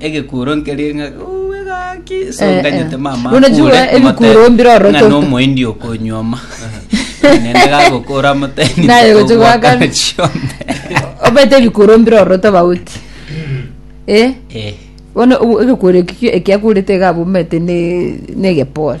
egekuro nkerie ng'a "Uu, egaki so Eh, eh. nganyete mama Bono jua akure, ebikuro omotebe, mbire ororo ng'a to- nomoendi okonyuoma nende gagokora moteni Naye gocha gwaka. chionde obete ebikuro mbire ororo tobauti eh Eh, bono obo- egekuro ekio ekiakurete iga abomete ne- negepore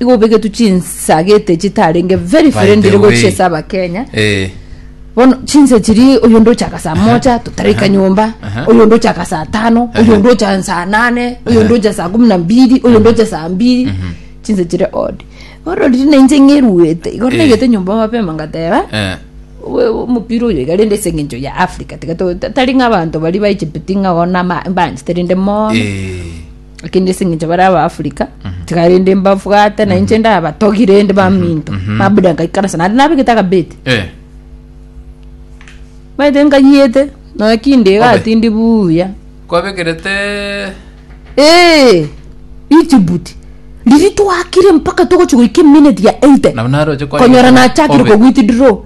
Igo obegetwe chinsagete chitarenge very By friendly the way. gochia ase abakenya Eh, bono chinse chiri oyonde ochaka saa moja totaraika Aha. nyomba Aha. oyonde ochaka saa tano Aha. oyonde ocha saa nane oyonde ocha saa kumi na mbili oyonde ocha saa mbili chinse chiri od bono riri nainche ng'eruete igo Eh. naigete nyomba mapema ngateba eh, "We- we- omopira oyo iga rende ase eng'encho ya africa tiga to- ta- tari ng'abanto bari baichipiti ng'a ona ma- banchete rende mono eh, lakini ase eng'encho bare abaafrika tiga rende mbabwate na inche ndabatogi rende baminto mabuda nkaikarasa naende nabegete akabeti Eh, maete nkayiete nonya kinde iga Obe. atindi buya kwabekerete Eh, Egypt riri twakire mpaka togochi goika eminute ya 80 nabo naroche kwa konyora nachakire Obe. kogwiti draw